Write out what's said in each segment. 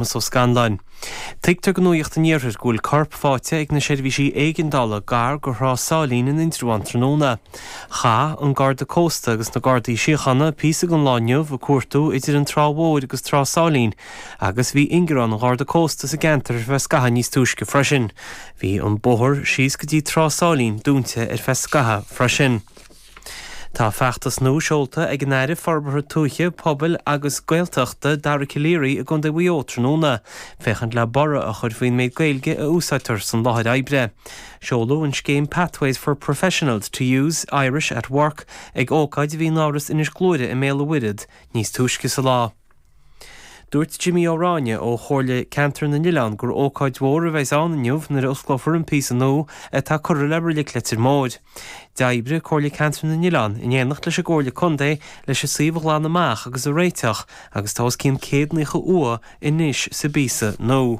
Séamus Ó Scanláin. Tuigtear do Nuacht an Iarthair go bhfuil corp fáighte ag na seirbhísí éigeandála gar do Thrá Sáilín in Indreabhán tráthnóna. Chaith an Garda Cósta agus na Gardaí Síochána píosa den lá inniu ag cuartú idir an Trá Mhór agus Trá Sáilín agus bhí ingearán an Gharda Cósta sa gceantar ar feadh scaithimh níos túisce freisin. Bhí an bóthar síos go dtí Trá Sáilín dúinte ar feadh scaithimh freisin. Tá feachtas nua seolta ag an Aire Forbartha Tuaithe, Pobail agus Gaeltachta, Dara Calleary i gContae Mhaigh Eo tráthnóna féachaint le borradh a chur faoin méid Gaeilge a úsáidtear san láthair oibre. Seoladh an scéim Pathways for Professionals to use Irish at Work ag ócáid a bhí in Áras Inis Gluaire i mBéal an Mhuirthead níos túisce sa lá. Dúirt Jimí Ó Ráinne ó Chomhairle Ceantar na nOileán gur ócáid mhór a bheas ann inniu nuair a osclófar an píosa nua atá curtha le Reilig Leitir Móir. D'oibrigh Comhairle Ceantar na nOileán in éineacht leis an gComhairle Contae leis an suíomh a ghlanadh amach agus a réiteach agus tá os cionn 190 uaigh anois sa bpíosa nua.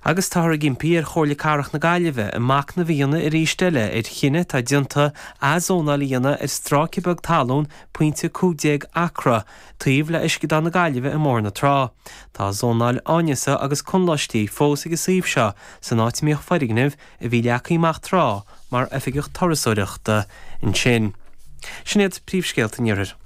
Agus táthar ag impí ar Chomhairle Cathrach na Gaillimhe a macnamh a dhéanamh arís eile ar chinneadh atá déanta ath-zónáil a dhéanamh ar stráice beag talún pointe 15 acra, Taobh le Uisceadán na Gaillimhe i mBóthar na Trá, tá zónáil áineasa agus conláistí fós ag an suíomh seo san áit a mbíodh foirgneamh a bhí leagtha amach tráth mar oifig turasóireachta ansin. Sin iad príomhscéalta an Iarthair.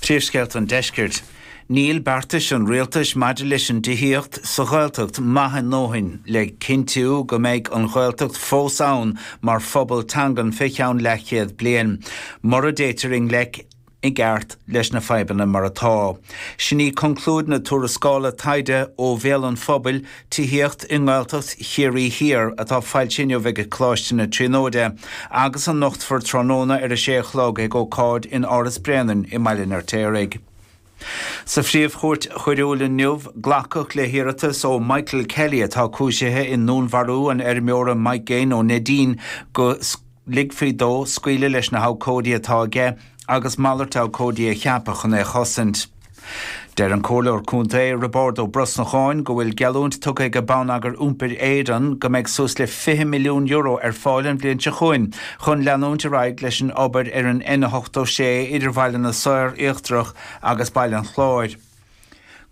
Príomhscéalta an Deiscirt. Níl beartais an Rialtais maidir leis an dtithíocht sa Ghaeltacht maith a ndóthain le cinntiú go mbeidh an Ghaeltacht fós ann mar phobal teangan fé cheann leathchéad bliain. Mura dtéitear i ngleic. i gceart leis na fadhbanna mar atá. Sin í conclúid na tuarascála taighde ó Bhéal an Phobail, Tithíocht i nGaeltacht Chiarraí Thiar atá foilsithe inniu ag Coláiste na Tríonóide agus a nochtfar tráthnóna ar a sé a chlog ag ócáid in Áras Bréanainn i mBaile an Fheirtéaraigh. Sa Phríomh-Chúirt Choiriúil inniu, glacadh le hiarratas ó Michael Kelley atá cúisithe i ndúnmharú an fheirmeora Mike Gaine ó Neidín go ligfí dó scaoileadh leis na habhcóidí atá aige agus malairt abhcóidí a cheapadh chun é a chosaint. Deir an Comhairleoir Contae, Roibeárd Ó Brosnacháin, go bhfuil geallúint tugtha ag Bonneagar Iompair Éireann go mbeidh suas le €20 milliún ar fáil an bhliain seo chugainn chun leanúint ar aghaidh leis an obair ar an N86 idir Bhaile na Saor Íochtarach agus Baile an Chláir.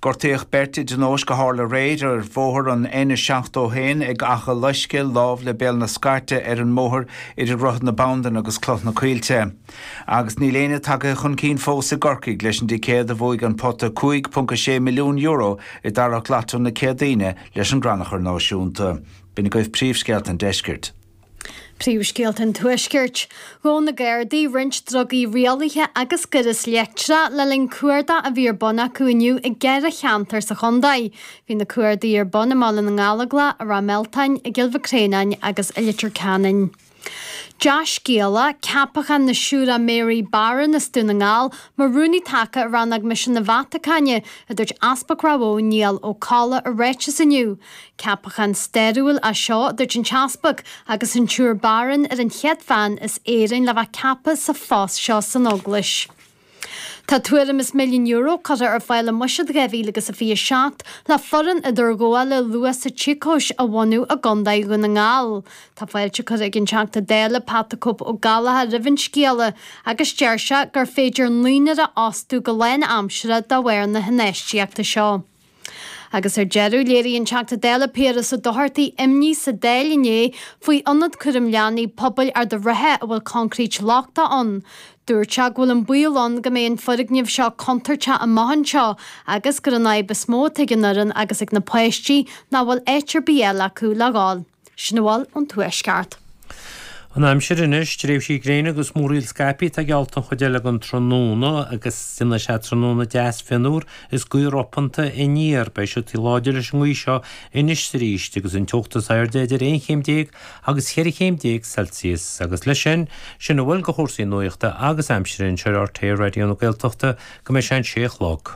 Gortaíodh beirt i dtionóisc a tharla aréir ar bhóthar an N71 ag Achadh Loisce lámh le Béal na Scairte ar an mbóthar idir Droichead na Bandan agus Cloich na Coillte. Agus níl éinne tagtha chun cinn fós i gCorcaigh leis an dticéad a bhuaigh an pota €5.6 milliún i dtarrac Lotto na Céadaoine leis an gCrannchur Náisiúnta. B'in agaibh príomhscéalta an deiscirt. Príomhscéalta an Tuaiscirt. Ghabh na Gardaí roinnt drugaí rialaithe agus gaireas leictreach le linn cuardaigh a bhí ar bun acu inniu i gceithre cheantar sa chontae. Bhí na cuardaigh ar bun i mBaile na nGallóglá, i Ráth Mealtáin, i gCill Mhic Réanáin agus i Leitir Ceanainn. Dea-scéala, Ceapachán na Siúire Mary Barron as Dún na nGall mar rúnaí taca i rannóg misean na Vatacáine, a dúirt Easpag Ráth Bhóth Niall Ó Colla i ráiteas inniu. Ceapachán stairiúil é seo, a dúirt an tEaspag, agus an tSiúr Barron ar an chéad bhean as Éirinn le bheith ceaptha sa phost seo san Eaglais. Tá tuairim is milliún euro curtha ar fáil i mbuiséad 2027 le foireann idirghabhála luath sa tsíocóis a bhunú i gContae Dhún na nGall. Tá fáilte curtha ag an Teachta Dála Pat 'The Cope' Ó Gallachóir roimh an scéala agus deir sé gur féidir naoinár a fhostú go lánaimseartha de bharr na hinfheistíochta seo. Agus ar deireadh, léirigh an Teachta Dála Piaras Ó Dochartaigh imní sa Dáil inné faoi ionad cúraim leanaí pobail Ard a' Rátha a bhfuil coincréit lochtach ann. Dúirt sé go bhfuil an baol ann go mbeidh an foirgneamh seo contúirteach amach anseo agus gurb í an fhadhb is mó atá ag an fhoireann agus ag na páistí ná nach bhfuil áit ar bith eile acu le dhul. Sin a bhfuil ón Tuaisceart. An aimsir anois, tréimhsí gréine agus múraíl scaipthe atá geallta an chuid eile den tráthnóna agus déanfaidh sé tráthnóna deas fionnuar is gaoth ropanta aniar. Beidh siotaí láidir leis an ngaoth seo anois 's arís agus an teocht is airde idir aon chéim déag agus cheithre chéim déag Celsius. Agus leis sin, sin a bhfuil de chúrsaí nuachta agus aimsire anseo ar RTÉ Raidió na Gaeltachta go mbeidh sé an sé a chlog.